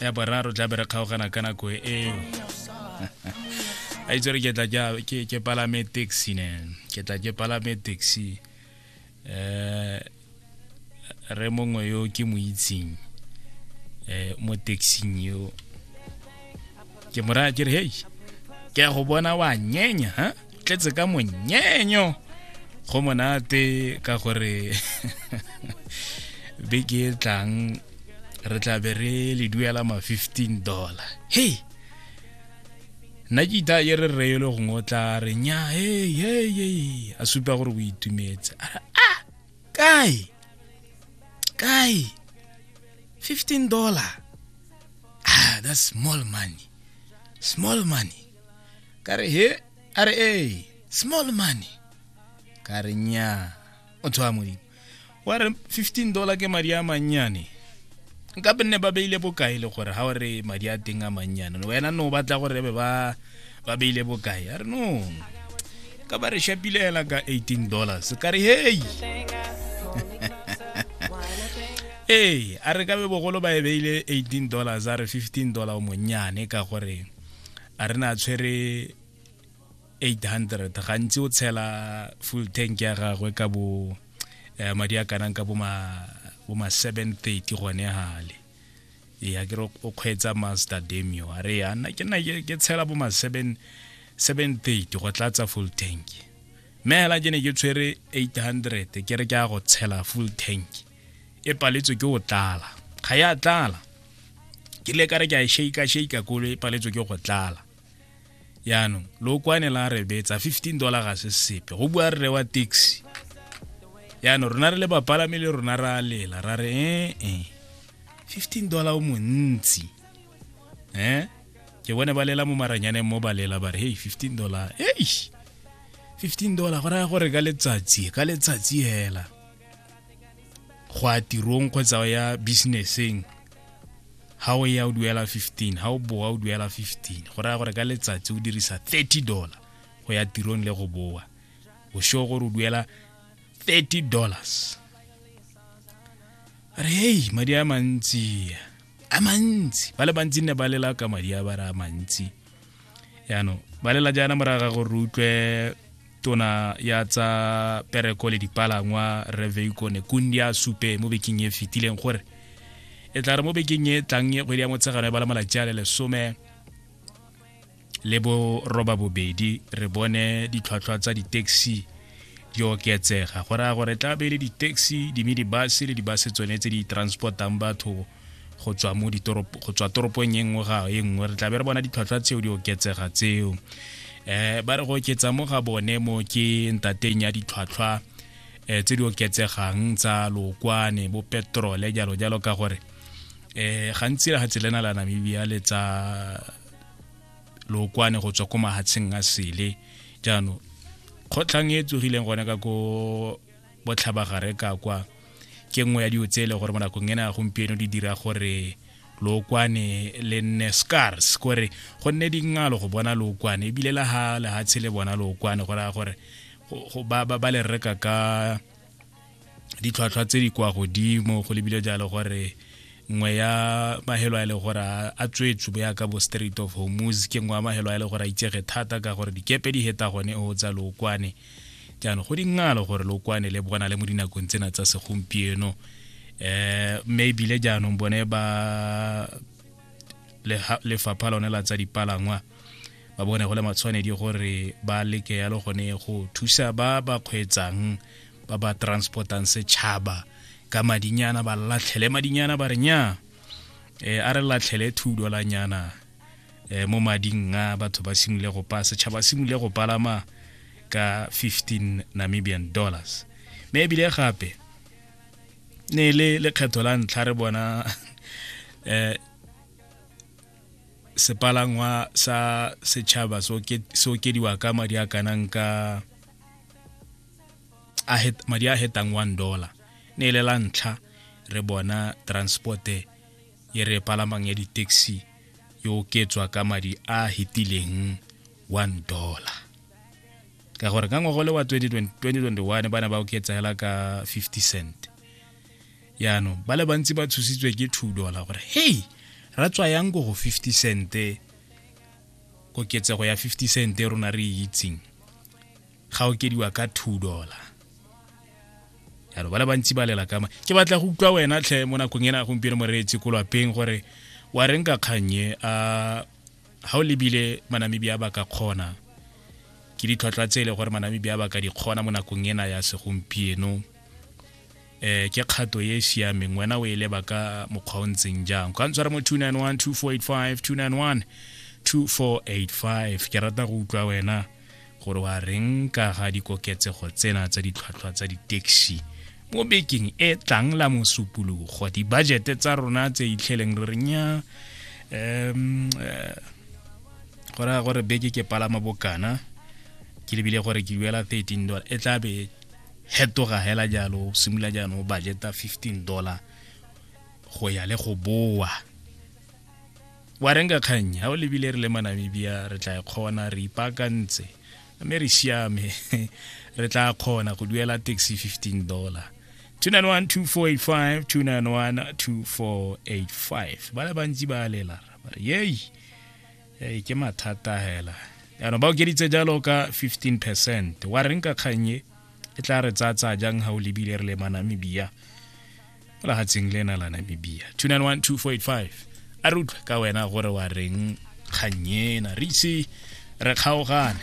ya boraro tla be re kgaogana ka nako eo a itse re ke tla ke palame taxi ne ke tla ke palame taxi eh re mongwe yo ke mo itseng eh mo taxing yo ke mo raya ke re hei ke ya go bona wa nyenya ha tletse ka monyenyo go monate ka gore beke e tlang re tla be re le duela ma 15 dollar hei nna ke itha ye re reyele gongwe o tla re nya hei hei a supa gore o itumetse a kai kai 15 dollar ah that's small money small money kare he are e small money kare nya o tswa modimo wa re 15 dollar ke madi a mannyane nka be nne ba beile bokae le gore ga o re madi a teng a mannyane wena no batla gore be ba ba beile bokae a re no ka ba re shapile hela ka 18 dollars ka re hei ee a re ka be bogolo ba e beile 18 dollars a re 15 dollar o monnyane ka gore a re na tshwere 800 gantsi o tshela full tank ya gagwe ka bo eh, madi a kanang ka bo ma bo ma 730 gone hale ya ke re o kgweetsa master demio a re yana ke nna ke tshela bo ma 7 730 go tlatsa full tank mme hela ke ne ke tshwere 800 ke re ke a go tshela full tank e paletswe ke o tlala ga ya tlala ke le ka re ke a e shake shake kolo e paletswe ke go tlala yaanong lookwane la re betsa 15 dollar ga se sepe go bua rre wa taxi yaanong rona re le bapalami le rona ra lela ra re ee eh, eh. 15 dollar o montsi eh ke bone ba lela mo maranyaneng mo ba lela ba re hey 15 dollar ei 15 dollar go raya gore ka letsatsi ka letsatsi hela go ya tirong kgotsa o ya businesseng ha o ya o duela 15 ha o boa o duela 15 go raya gore ka letsatsi o dirisa 30 dollar go ya tirong le go boa o sure gore o duela 30 dollars re hei madi a mantsi a mantsi ba le bantsi nne ba lela ka madi a ba re a mantsi yaanong ba lela jaana moraga gore re utlwe tona ya tsa pereko le dipalangwa reveiko nekundi a supe mo bekeng e fetileng gore e tla re mo bekeng e tlang e kgwedi ya motshegano e bala malatsi a le lesome le bo roba bobedi re bone ditlhwatlhwa tsa di-taxi di oketsega go raya gore tla be le di-taxi di-minibus le di-bus tsone tse di transportang batho go tswa mo ditoropo go tswa toropong e nngwe ga e nngwe re tla be re bona ditlhwatlhwa tseo di oketsega tseo eh ba re go oketsa mo ga bone mo ke ntateng ya ditlhwatlhwa eh tse di oketsegang tsa lokwane bo petrole jalo jalo ka gore eh gantsi le ga tselena la Namibia le tsa lokwane go tswa ko mahatsheng a sele jaanong kgotlhang e tsogileng gone ka ko botlhabagare ka kwa ke nngwe ya dio tse e le gore mo nakong ena gompieno di dira gore lookwane le nne scars kore go nne dingalo go bona lookwane ebile la ha lehatshe le bona lookwane go raya gore ba le reka ka ditlhwatlhwa tse di kwa godimo go lebile jalo gore nngwe ya mahelo a e le gore a tswetswe bo yaka bo street of homus ke nngwe ya mahelo a e le gore a itsege thata ka gore dikepe di heta gone o tsa lookwane jaanong go dingalo gore lo kwane le bona le mo dinakong tsena tsa segompieno eh mme ebile jaanong bone ba lefapha lone la tsa dipalangwa ba bone go le matshwanedi gore ba leke yalo gone go thusa ba ba kgweetsang ba ba transportang setšhaba ka madinyana ba latlhele madinyana ba re nya e a re latlhele thudo la nyana eh, mo mading a batho ba simole go pa setšhaba simole go palama ka 15 namibian dollars mme ebile gape ne le lekgetho la ntlha re bona eh sepalangwa sa setšhaba so okediwa ka madi a kanang ka madi a hetang one dollar ne le la ntlha re bona transporte e re palamang ya di-taxi e oketswa ka madi a hetileng one dollar ka gore ka ngwago le wa 2021 ba ne ba oketsa hela ka 50 cent yaanong ba le bantsi ba tshositswe ke two dollar gore hei ra tswa yang ko go 50 cente koketsego ya 50 cente rona re e itseng ga okediwa ka two dollar yalo ba le bantsi ba lela kama ke batla go utlwa wena tlhe mo nakong ena gompieno moreetsi ko lwapeng gore wa reng ka kgannye a ga o lebile manamibia ba ka kgona ke ditlhwatlhwa tse e le gore manamibia ba ka di kgona mo nakong ena ya segompieno eh ke kgato e siameng wena o e leba ka mokgwa o ntseng jang ka ntshwara mo 291 2485 291 2485 ke rata go utlwa wena gore wa reng ka ga dikoketsego tsena tsa ditlhwatlhwa tsa di-taxi mo bekeng e tlang la mosupologo dibajete tsa rona tse itlheleng re renya um eh, go raya gore beke ke palama bokana ke lebile gore ke duela 13 dollar e tla be fetoga hela jalo o simolola jaanong o budgeta 15 dollar go ya le go boa wa reng ka kgang ga o lebile re le manamibia re tla e kgona re ipaakantse mme re siame re tla kgona go duela taxi 15 dollar 2912485 2912485 ba le bantsi ba lela ba re yei ee ke mathata hela yaanong ba okeditse jalo ka 15 percent wa reng ka kgannye e tla re tsatsa jang ga o lebile re le manamibia mo legatsheng le na la namibia 2912485 a re utlwe ka wena gore wa reng kgannye na re ise re kgaogane